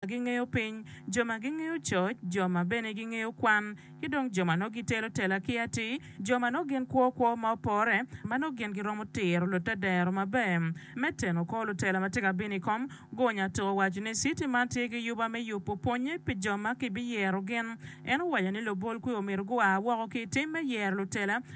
gingeyo piny, jo ma gingeyo coc, jo ma bene gingeyo kwan, ki dong jo ma nongo gitelo tela ki atir, jo ma nongo gin kwo kwo ma opore, ma nongo gin giromo tiro lutedero maber. Me teno kor lutela ma tye ka bino i kom, Gunya Ato owaco ni citi man tye ki yuba me yubo pwonnye pi jo ma kibiyero gin. En owaco ni lubol kwi omyero gua woko ki i tim me yero lutela,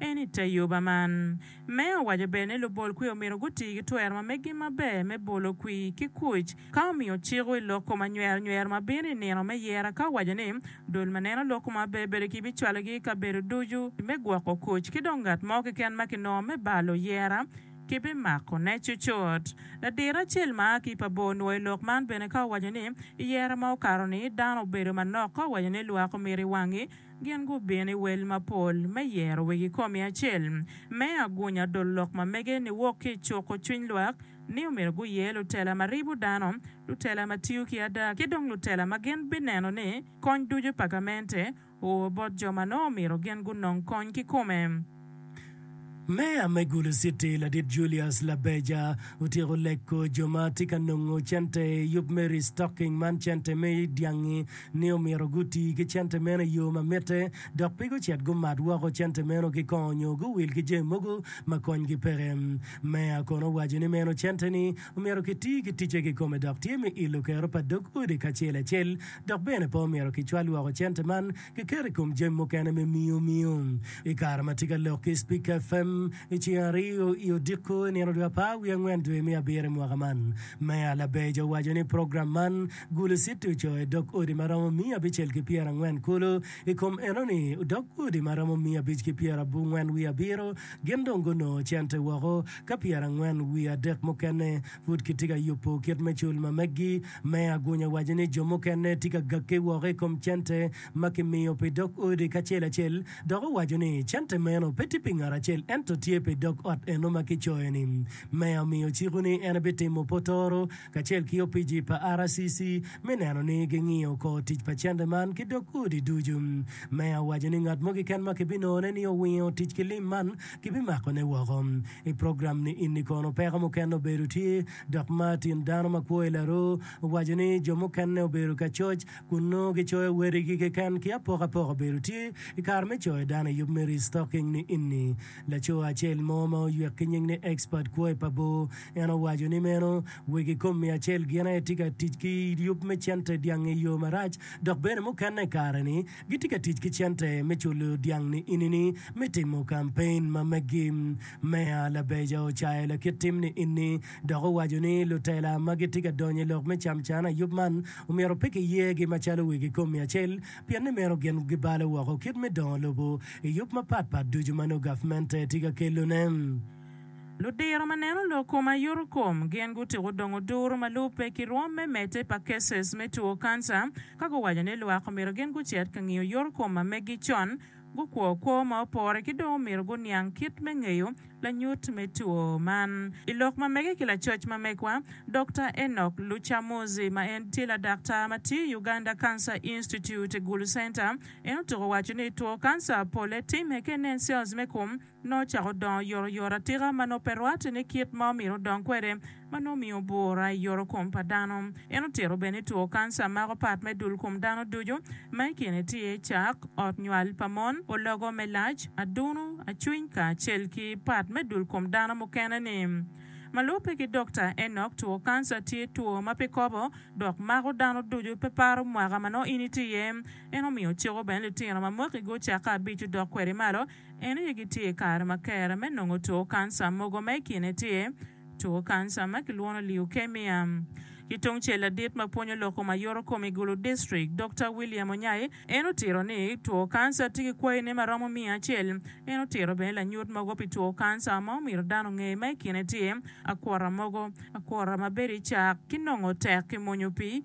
En i te yoba man. Meya owaco bene ni lubol kwi omyero guti ki twero ma meggi maber me bolo kwi ki kuc ka omiyo ciko i lok kom anywer nywero ma bino i nino me yera ka owaco ni dul ma neno lok kom abe bedo ki bicwalogi i kabedo ducu me gwoko kuc ki dong ngat mo keken ma kinongo me balo yera ki bimako ne cucut. Ladiro acel ma a ki pa bor nwo i lok man bene ka owaco ni i yera ma okato ni dano obedo manok ka owaco ni lwak omyero i wangi Gin gubino i wel mapol me yero wegi komi acel me agunya dul lok ma mege niwok ki i cuko cwiny lwak ni omyero guye lutela ma ribo dano, lutela ma tiyo ki ada, ki dong lutela ma gin bineno ni kony ducu pa gamente oo bot jo ma nongo omyero gin gunong kony kikome. Meya me Gulu City, Ladit Julius Labeja, otyeko leko jo ma tye ka nongo cente i yub me restocking man cente me dyangi ni omyero guti ki cente meno i yo ma mitte dok pe gucit gumat woko cente meno ki kong nyo guwil ki jami mogo ma konygi peke. Meya kono owaco ni meno cente ni omyero ki ti ki ticce kikome dok tye me ilo kero pa dog odi kacel acel dok bene pe omyero ki cwal woko cente man kiketo i kom jami mukene me miyo miyo. I kare ma atye ka lok ki i Spika FM i ceng aryo i odiko i nino dwe apar wiye angwen dwe me abiro i mwaka man, Meya Labeja owaco ni program man gulo citi ocoo i dog odi ma romo miya abicel ki pyera angwen kulu. I kom enoni, dog odi ma romo miya abic ki pyera abungwen wiye abiro gin dong gunongo cente woko, ka pyera angwen wiye adek mukene pud kitye ka yubo kit me cul ma meggi. Me agunya waco ni jo mukene tye ka gakke woko i kom cente ma kimiyo pi dog odi kacel acel, dok owaco ni cente meno pe tye pi ngat acel ento tye pi dog ot eno ma kicoyo-ni. Meya omiyo ciko ni en ebitimo potoro kacel ki opici pa RCC me neno ni gingiyo kor tic pa cente man ki dog odi ducu. Meya owaco ni ngat mo keken ma kibinongone ni owingo tic ki lim man kibimakone woko. I program-ni Inni Kono Peko Mukene Obedo Tye? Dok Martin, dano ma kwo i Laru, owaco ni jo mukene obedo ka coc kun nongo gicoyo wadigi keken ki apokapoka obedo tye i kare me coyo dano i yub me restocking ni ini. Laco acel mo ma oywek ki nying ni Expert kwo i pa bor, en owaco ni meno weg i kom miyo acel gin aye tye ka tic ki yub me cente dyangi i yo marac dok bene mukene i kare ni gitye ka tic ki cente me culo dyang ni ini ni me timo kampein ma megi. Meya Labeja ocayo lakit tim ni enni dok owaco ni lutela ma gitye ka donyo i lok me camcan ayub man omyero pe kiyegi macalo wigi kom mia acel pien ni meno gin gibalo woko kit me dongo lobo i yub mapat pat ducu ma nongo gavmente tye ka kelone. Ludiro ma neno lok kom aye yoto kom gin gutyeko dongo duru ma lubbe ki rwom me medde pa cases me two kanca ka guwaco ni lwak omyero gin gucit ka ngiyo yoto kom ma meggi con gukwo kwo ma opore ki dong omito guniang kit me ngeyo lanyut me two man. I lok ma mege ki lacoc ma megwa, Dokta Enock Lucamuzi ma en tye ladaktar ma tiyo i Uganda Cancer Institute, Gulu Center, en otuko waco ni two kanca pole timme ka inen cells me kom nongo ocako dongo yotoyot atika ma nongo pe rwatte ni kit ma omyero odong kwede, ma nongo omiyo bwura i yotokom pa dano. En otito bene ni two kanca mako pat me dul kom dano ducu, ma i kine tye cak, ot nywal pa mon, ologo me lac, adunu, acwiny kacel ki pat me dul kom dano mukene-ni. Ma lubbe ki Dokta Enock, two kanca tye two ma pe kobo dok mako dano ducu, pe paro mwaka ma nongo in itye iye. En omiyo ciko bene litino ma mwakigi ocako abic odok kwede malo En aye gitye i kare ma kera me nongo two kanca mogo ma i kine tye two kanca ma kilwongo leukemia. Ki tungcel ladit ma pwonyo loko ma yoro kom i Gulu District, Dokta William Onyai, en otito ni two kanca tye ki kwayine ma romo miya acel. En otito bene lanyut mogo pi two kanca ma omyero dano onge ma i kine tye akwota mogo, akwota ma bedo i cak, ki nongo tek ki mwonyo pi